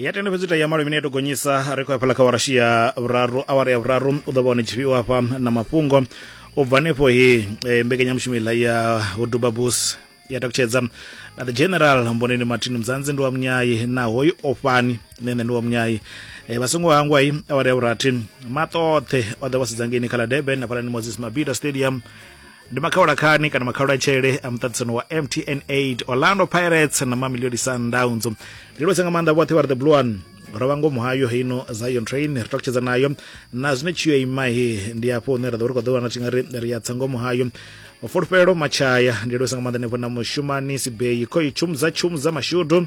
ya tenda fhedzi ya malo imene ya to gonyisa ri khou ya phala kha warashi ya vhuraru awara ya vhuraru u ḓo vha hone tshifhiwa hafha na mafhungo u bva hanefho he eh, mbekanyamushumo iḽa ya uduba bus ya takutshedza na the general mboneni martin mzanzi ndi wa munyayi na hoyu ofhani ne nṋe ndi wa munyayi eh, vha songo hangwa i awara ya vhurathi maṱoṱhe o ḓa vha sedzangeni kha ḽa durban na phalani moses mabida stadium ndi makhawulakhani kana makhawulatshele a muṱaṱisano wa mtn 8 orlando pirates na mamilioni sundowns ndi lose nga maanḓa vhoṱhe vha ri the blue one ro vha ngomu hayo heino zion train ri takutshedza nayo na zwine tshiyo ima he ndi afho hune ra ḓo ri khou ḓo wana tshi nga ri ri ya tsa ngomu hayo mafulufhelo matshaya ndi lose nga maanḓa nefho na mushumani sibeyi khoi tshumu dza tshumu dza mashudu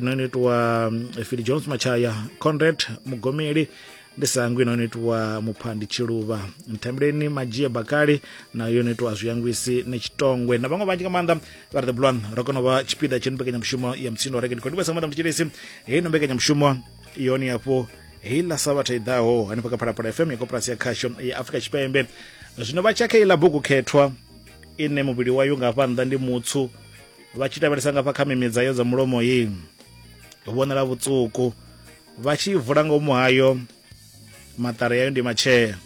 no no itiwa phili jones machaya conrad mugomeli ndi sangwi no no itiwa muphandi tshiluvha nthembeleni madzhie bakali na yo no itiwa zwiyangwisi ni tshitongwe na vhaṅwe vhanzhi nga maanḓa vha ri the blon ro kona u vha tshipiḓa tshe ni mbekanyamushumo ya mutsindo reke ndi khou ndivhesa nga maanḓa mutshilisi heyi no mbekanyamushumo yoni hafho heyi ḽa sabatha i ḓaho hanefha kha phalaphala fm ya koporasi ya khasho ya afrika tshipembe zwino vha tshakha iḽa bugu khethwa ine muvhili wayo nga hafha nnḓa ndi mutsu vha tshi lavhelesa nga fha kha mimidza yo dza mulomo yi vhonala vhutsuku vha tshi vula ngomu hayo maṱari yayo ndi matshea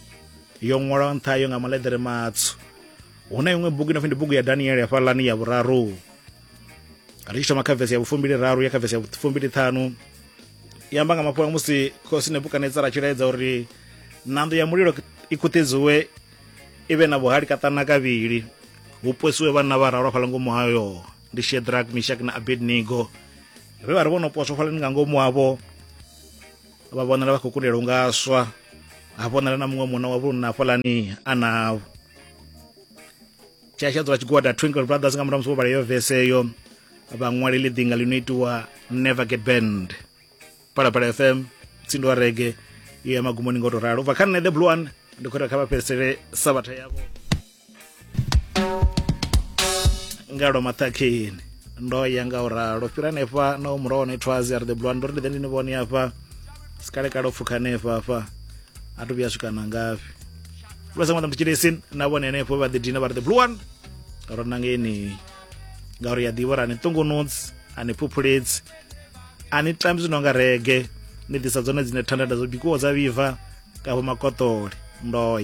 yo ṅwalwa nṱha yo nga maḽeḓere matswu hu na iṅwe bugu inopfi ndi bugu ya daniele hafhaḽani ya vhuraru ri tshi thoma kha vesi ya vhufumbili raru ya kha vesi ya vhufumbili ṱhanu i amba nga mafhungo musi khosi nebukadnetsara a tshi laedza uri ṋanḓo ya mulilo i khuṱhedziwe i vhe na vhuhali kaṱana kavhili hu posiwe vhanna vha ralo fhala ngomu hayo ndi shedrak mishak na abednego vhe vha ri vho no poswa fhalani nga ngomu havho vha vhonala vha khou kundela u nga swa ha vhonala na muṅwe munna wa vhulunna hafhalani a navho tshasha dzula tshigwada twinkle brothers nga murahu musi vho vhala yo vese yo vhaṅwaleli ḓinga ḽi no itiwa never get band phalaphala fm tsindo wa rege i ya magumoni ngo to ralo ubva kha nṋe the blue one ndi khou ita kha vha fhedzisele sabatha yavho nga lwa maṱhakheni ndo ya nga u ralo fhira hanefha na u muraho ne thwazi a ri the blue one ndo ri ndi ḓe ndi ni vhone afha sikalekale u pfukha hanefha afha a to vhuya swika na ngafhi lwa sa ṅwana mutshilesini na vhone henefho vha ḓi dina vha ri the blue one ro nangeni ngauri ya ḓivha uri a ni ṱungunudzi a ni phuphuledzi a ni tambi zwino nga rege ni ḓisa dzone dzine thandada dzo bikiwaho dza vhibva kavho makotoli ndo